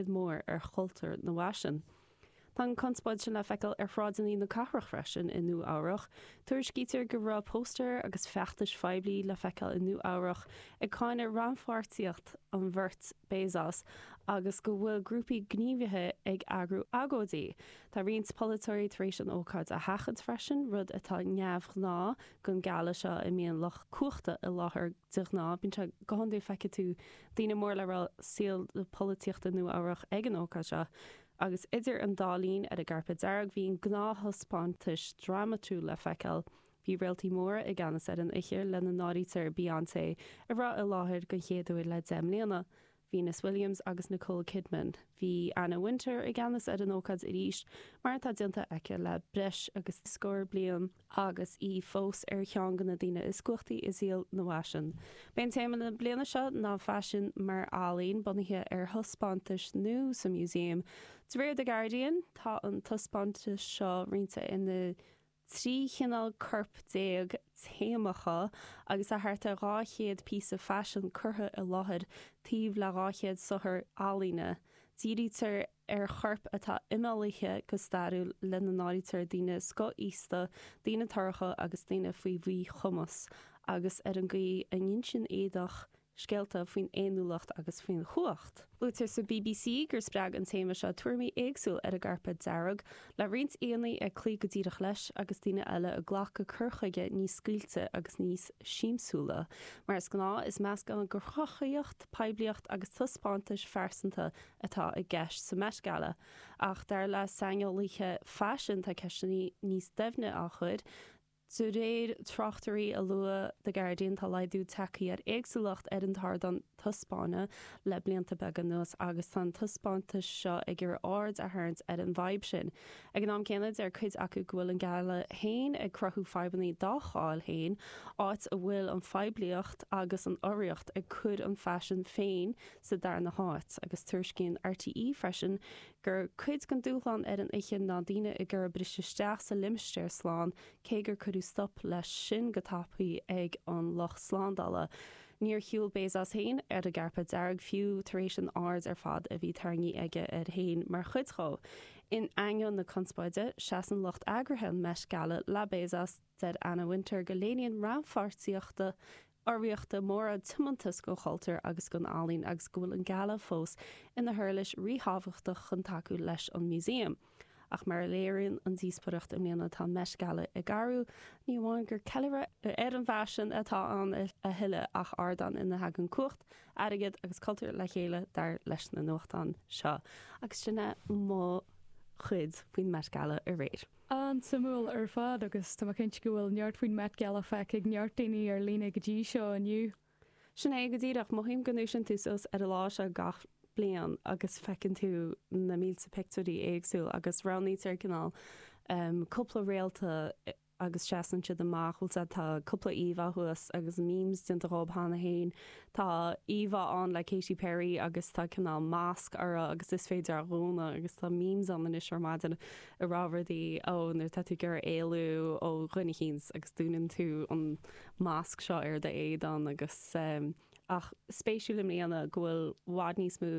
mór ar chultúr na bhfaisean. Tá an conspóid sin le feiceáil ar shráideanna na cathrach freisin i Nua Eabhrach. Tuairiscítear go raibh póstaeir agus feachtais phoiblí le feiceáil i Nua Eabhrach ag cáineadh rannpháirtíocht an bheirt Bezos agus go bhfuil grúpaí gníomhaithe ag eagrú agóidí. Tá roinnt polaiteoirí tar éis an ócáid a sheachaint freisin, rud atá neamhghnáth don gala seo a mbíonn lucht cumhachta i láthair go De ghnáth, bíonn sé go cinnte feicfidh tú daoine mór le rá saol na polaitíochta Nua-Eabhrach ag an ócáid seo, agus idir an dá linn, ar an gcairpéad dearg, bhí na gnáth-thaispeántais drámatúil le feiceáil. Bhí réaltaí móra i gceannas ar an oíche, lena n-áirítear Beyonce, a raibh i láthair den chéad uair le deich mbliana, Venus Williams agus Nicole Kidman. Bhí Anna Wintour i gceannas ar an ócáid arís, mar atá déanta aici le breis agus scór bliain, agus í fós ar cheann de na daoine is cumhachtaí i saol na bhfaisean. B'é téama na bliana seo ná Faisean mar Ealaín, bunaithe ar thaispeántais nua sa músaem. De réir The Guardian, tá an taispeántas seo roinnte ina 13 chineál corp téamacha agus tá thart ar 200 píosa faisin curtha i láthair taobh le 200 saothar ealaíne. Dírítear ar choirp atá imeallaithe go stairiúil lena n-áirítear daoine scothaosta, daoine torracha agus daoine faoi mhíchumas agus ar an gcaoi a n-insíonn éadach Scéalta faoin fhéiniúlacht agus faoin chumhacht. Luaitear sa BBC gur spreag an téama seo tuairimí éagsúla ar an gcairpéad dearg, le roinnt aíonna ag cloí go díreach leis agus daoine eile ag glacadh cur chuige níos scaoilte agus níos siamsúla. Mar is gnáth, is meascán de chruthaitheacht, poiblíocht agus taispeántais phearsanta atá i gceist sa Met Gala, ach dar le saineolaithe faisin tá ceisteanna níos doimhne á gcur, De réir tráchtairí a luaigh The Guardian tá laghdú tagtha ar éagsúlacht ar an t-ardán taispeána le blianta beaga anuas agus tá an taispeántas seo ag iarraidh aird a tharraingt ar an bhfadhb sin. Ag an am céanna deir cuid acu go bhfuil an gala féin ag cruthú fadhbanna dá cháil féin áit a bhfuil an phoiblíocht agus an urraíocht ag cur an fhaisin féin sa darna háit agus tuairiscíonn RTÉ freisin gur cuid den dúshlán ar an oíche ná daoine ag iarraidh briseadh isteach sa limistéar slán, cé gur cuireadh stop leis sin go tapaidh ag an lucht slándála. Níor shiúl Bezos féin ar an gcairpéad dearg fiú tar éis an aird ar fad a bhí tarraingthe aige air féin mar chuid dhó. In ainneoin na conspóide, seasann lucht eagraithe an Met Gala le Bezos. Deir Anna Wintour go léiríonn rannpháirtíocht urraíochta móra, tiomantas don chultúr agus don ealaín agus go bhfuil an Gala fós ina huirlis ríthábhachtach chun tacú leis an Museum. Ach mar a léiríonn an díospóireacht i mbliana tá an Met Gala ag athrú, ní amháin gur ceiliúradh ar an bhfaisean atá ann a thuilleadh ach ardán ina thagann cumhacht, airgead agus cultúr le chéile, dar leis na nuachtáin seo. Agus sin é mo chuid faoin Met Gala aréir. An-suimiúil ar fad agus tá mé cinnte go bhfuil neart faoin Met Gala feicthe ag neart daoine ar líne go dtí seo inniu. Sin é go díreach. Mothaím go ndúisíonn tú suas ar an lá seo gach bliain agus feiceann tú na mílte pictiúirí éagsúla agus roghnaítear cineál cúpla réalta agus seasann siad amach, bhuel sea, tá cúpla íomhá thuas agus memes déanta dhób cheana féin. Tá íomhá ann le Katy Perry agus tá cineál masc uirthi agus is féidir é a dhúnadh agus tá memes ann anois ar maidin. a rá rudaí, ó nuair atá tú ag iarraidh éalú ó dhuine eicínt agus dúnann tú an masc seo ar do éadan agus ehm. Ach spéisiúil i mbliana go bhfuil bhfad níos mó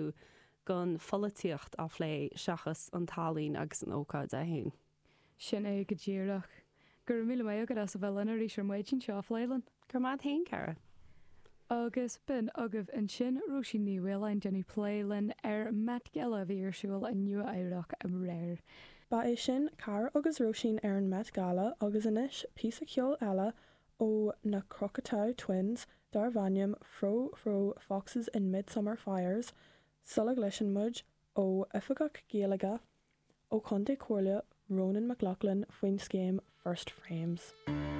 gon pholaitíocht á phlé seachas an tallainn agus an ócáid é féin. Sin é go díreach. Go raibh míle maith agat as a bheith linn arís ar maidin le seo a phlé linn. Go raibh maith a'd fhéin, Cara. Agus b'in agaibh ansin Róisín Ní Mhaoláin déanamh plé linn ar Met Gala a bhí ar siúl i Nua Eabhrac aréir. Ba é sin Cara agus Róisín ar an Met Gala agus anois píosa ceoil eile ó na Cocteau Twins darbh ainm Frou-Frou Foxes in Midsummer Fires sula gcloiseann muid ó Oifigeach Gaeilge Ó Chontae Chomhairle Ronan McLaughlin faoin scéim 'First Frames'.